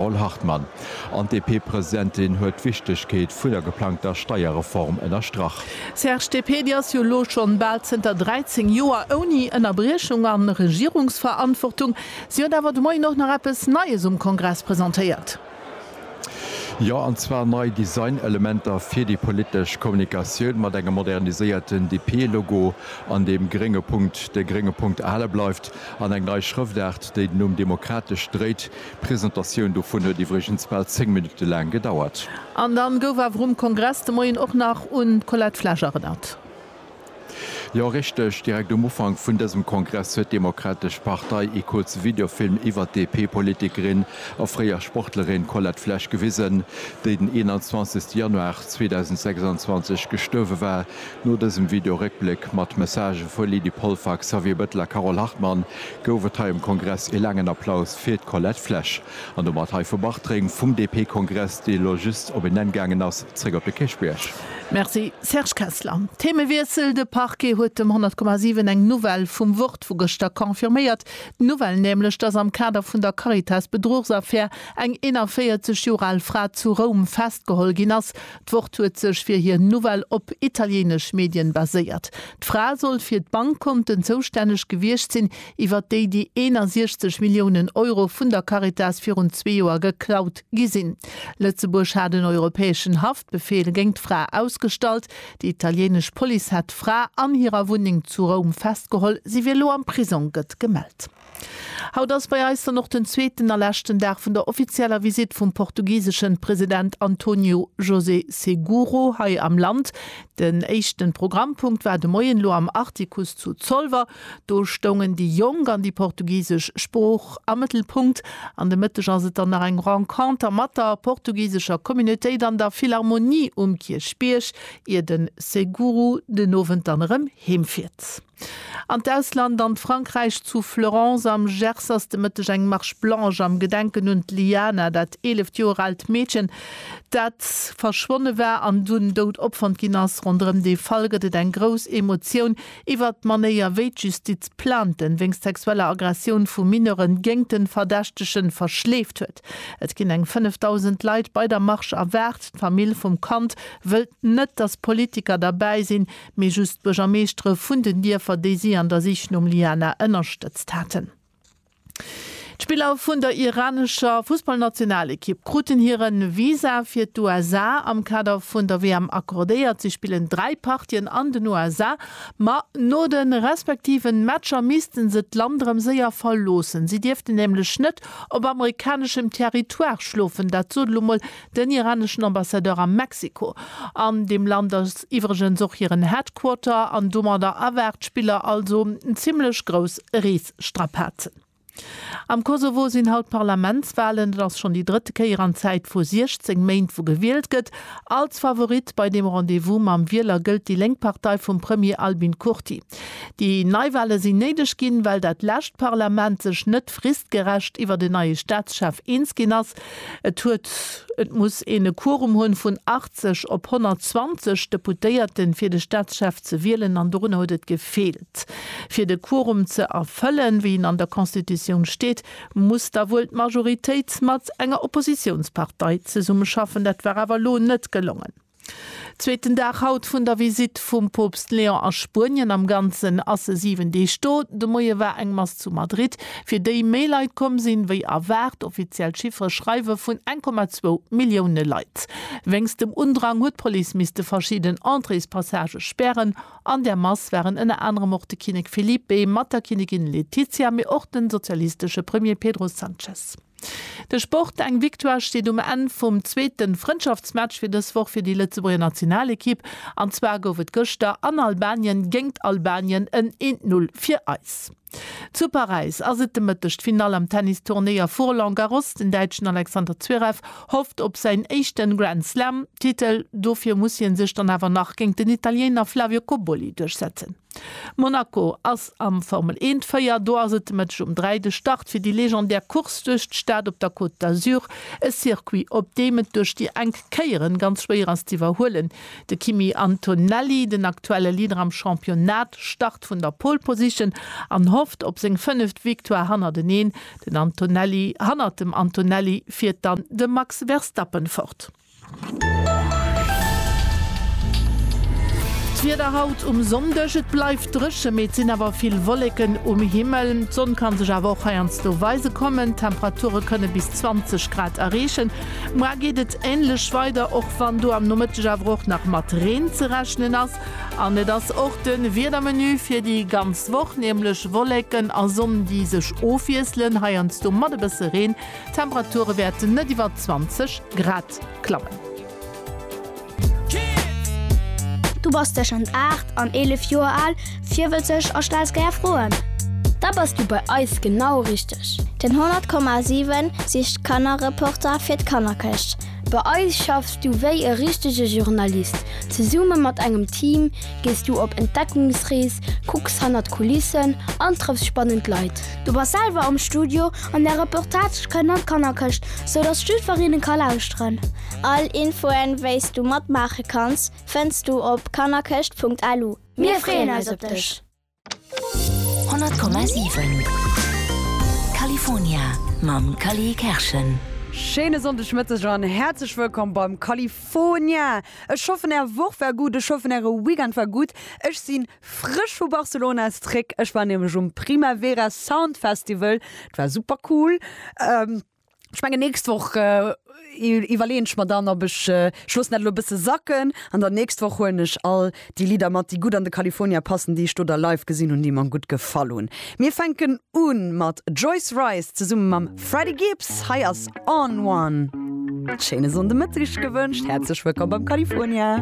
Paul Hartmann, An d'DP-Presidentin huet d'Wichtegkeet vun der geplangter Steierreform ënnerstrach. Serge, D'DP, déi ass jo elo schonn bal zënter 13 Joer ouni Ënnerbriechung a Regierungsverantwortung. Si huet awer de Moien och nach eppes Neies um Kongress presentéiert. Jo, an zwar nei Designelementer fir déi politesch Kommunikatioun, mat engem moderniséierten DP-Logo, an deem grénge Punkt de grénge Punkt erhale bleift, an eng nei Schrëftaart, déi den Numm demokratesch dréit. D'Presentatioun dovun huet iwwregens bal 10 Minutte laang gedauert. An dann gouf awer um Kongress de Moien och nach un d'Colette Flesch erënnert. Jo richteg, direkt um Ufank vun dësem Kongress huet d'Demokratesch Partei ee kuerze Videofilm iwwert d'DP-Politikerin a fréier Sportlerin Colette Flesch gewisen, déi den 21 Januar 2026 gestuerwe war. No dësem Video-Réckbléck mat Messagë vu Lydie Polfer, Xavier Bettel a Carole Hartmann, gouf et hei um Kongress ee laangen Applaus fir d'Colette Flesch. An domat hei vu Bartréng vum DP-Kongress, dee elo just op een Enn gaangen ass, zréck op de Kierchbierg. Merci Serge Kessler. Themewiessel, De Parquet huet dem 100,7 eng Nouvelle vum Wort vu gëschter confirméiert. D'Nouvelle nämlech, datt am Kader vun der Caritas-Bedruchsaffär eng 41 Joer al Fra zu Roum festgeholl ginn ass, D'Wort huet sech fir hir Nouvelle op italieenesch Medien baséiert. D'Fra soll fir d'Bankkonten zoustänneg gewiescht sinn, iwwert déi déi 61 Milliounen Euro vun der Caritas virun zwee Joer geklaut gi sinn. Lëtzebuerg hat en europäeschen Haftbefeel géint d'Fra ausgestallt. Déi italieenesch Police hat d'Fra an hirer Wunneng zu Roum festgeholl. Si wier elo am Prisong, gëtt gemellt. Haut ass bei eis dann och den zweeten a leschten Dag vun der offizieller Visitt vum portugiseschen President Antonio José Seguro hei am Land. Den éischten Programmpunkt war de Moien elo am Artikuss zu Zolwer. Do stoungen déi Jonk an déi portugisesch Sprooch am Mëttelpunkt. An de Mëtteg ass et dann nach eng Renconter mat der portugisescher Communautéit an der Philharmonie um Kierchbierg, ier den Seguro den Owend dann erëm heem fiert. An d'Ausland, an Frankräich, zu Fleurance am Gers ass de Mëtteg eng Marche blanche am Gedenken un d'Liana, dat eeleft Joer aalt Meedchen, dat verschwonne war an dunn dout opfonnt ginn ass. Ronderëm dee Fall gëtt et eng grouss Emotioun iwwert d'Manéier, wéi d'Justiz Plainten wéinst sexueller Aggressioun vu Mineure géint de Verdächtege verschleeft huet. Et ginn eng 5.000 Leit bei der Marche erwaart. D'Famill vum Kand wëllt net, datt Politiker derbäi sinn, mee just d'Buergermeeschtere vun den Dierfer, déi si an der Sich nom Liana ënnerstëtzt haten. D'Spiller vun der iranescher Fussballnationalekipp kruten hire Visa fir d'USA am Kader vun der WM accordéiert. Si spillen dräi Partien an den USA, ma no de respektiven Matcher misste se d'Land erëm séier verloossen. Si dierften nämlech net op amerikaneschem Territoire schlofen, dat sot elo mol Den iraneschen Ambassadeur a Mexiko. An deem Land ass iwwregens och hiren Headquarter an domadder erwaart d'Spiller also zimmlech grouss Reesstrapazen. Am Kosovo sinn haut Parlamentswalen. Et ass schonn déi drëtt Kéier an Zäit vu 16 Méint wou gewielt gëtt. Als Favorit bei deem Rendez-vous mam Wieler gëllt déi lénk Partei vum Premier Albin Kurti. Déi Neiwale sinn néideg ginn, well dat lescht Parlament sech net fristgerecht iwwert en neie Staatschef eens ginn ass. Et huet, et muss een e Quorum hunn vun 80 op 120 Deputéierten, fir de Staatschef ze wielen, an dorunner huet et gefeelt. Fir de Quorum ze erfëllen, wéi en an der Constitutioun steet, muss da wuel d'Majoritéit mat enger Oppositiounspartei zesummeschaffen. Dat war awer elo net gelongen. Zweeten Dag haut vun der Visitt vum Poopst Leon a Spuenien. Am Ganzen ass e 7 Deeg do. De Moie war eng Mass zu Madrid, fir déi méi Leit komm sinn, wéi erwaart. Offiziell Chiffere schreiwe vun 1,2 Millioune Leit. Wéinst dem Undrang huet d'Police misste verschidden Entréespassagë spären. An der Mass waren ënner anerem och de Kinnek Felipe mat der Kinnigin Letizia, mee och de sozialistesche Premier Pedro Sanchez. De Sport, Eng Victoire steet um Enn vum zweete Frëndschaftsmatch fir dës Woch fir déi Lëtzebuerger Nationalekipp. An zwar gouf et gëschter an Albanien géingt Albanien en een Null fir eis. Zu Paräis ass et de Mëtteg d'Finall am Tennisturnéier vu Roland Garros. Den Däitschen Alexander Zverev hofft op säin éischte Grand Slam-Titel. Dofir muss hie sech dann awer nach géingt den Italiener Flavio Cobolli duerchsetzen. Monaco ass am Formel Eent Véier. Do ass et de Mëtteg um 3 de Start fir déi legendär Course duerch d'Stad op der Côte d'Azur. E Circuit, op deem et duerch déi enk Kéieren ganz schwéier ass z'iwwerhuelen. De Kimi Antonelli, den aktuelle Leader am Championnat, start vun der Pole Position an hofft op seng fënneft Victoire hannerteneen. Den Antonelli, Hannert dem Antonelli fiert dann de Max Verstappen fort. D'Wieder haut um Sonndeg, Et bleift dréche, mee et sinn awer vill Wolleken um Himmel. D'Sonn kann sech awer och heiansdo weise kommen. D'Temperature kënne bis 20 Grad erreechen. Muer geet et änlech weider, och wann do am Nomëtteg awer och nach mat Reen ze rechnen ass. An et ass och de Wiedermenu fir déi ganz Woch, nämlech Wolleken a Sonn, déi sech ofwiesselen, heiansdo mat e bësse Reen. D'Temperature wäerten net iwwer 20 Grad klammen. Du bass tëschent 8 an 11 Joer al, virwëtzeg a stells gär Froen? Da bass du bei eis genau richteg! Den 100,7 sicht Kannerreporter fir d'Kannerkëscht. Bei eis schaffs du wéi e richtege Journalist. Zesumme mat engem Team gees du op Entdeckungsrees, kucks hannert d'Kulissen an trëffs spannend Leit. Du bass selwer am Studio an där Reportage kënnt an d'Kannerkëscht, sou datt d'Stüferinnen ka lauschteren. All Infoen, wéis du matmaache kanns, fënns du op kannerkëscht.lu. Mir freeën eis op dech! 100,7 California mam Cally Kerschen. Schéine Sonndegmëtteg an häerzlech wëllkomm beim California! Ech hoffen är Woch war gutt, ech hoffen äre Weekend war gutt. Ech sinn Frësch vu Barcelona ass zréck. Ech war nämlech um Primavera Sound Festival, et war super cool. Ech mengen nächst Woch iwwerleeën ech mer dann op ech, ech loossen dat elo e bësse sacken, an dann nächst Woch huelen ech all déi Lidder mat déi gutt an de California passen, déi ech do da live gesinn hunn, déi mer gutt gefall hunn. Mir fänken u mat Joyce Wrice zesumme mam Freddie Gibbs, hei ass On One. Schéine Sonndemëtteg gewënscht, häerzlech wëllkomm beim California.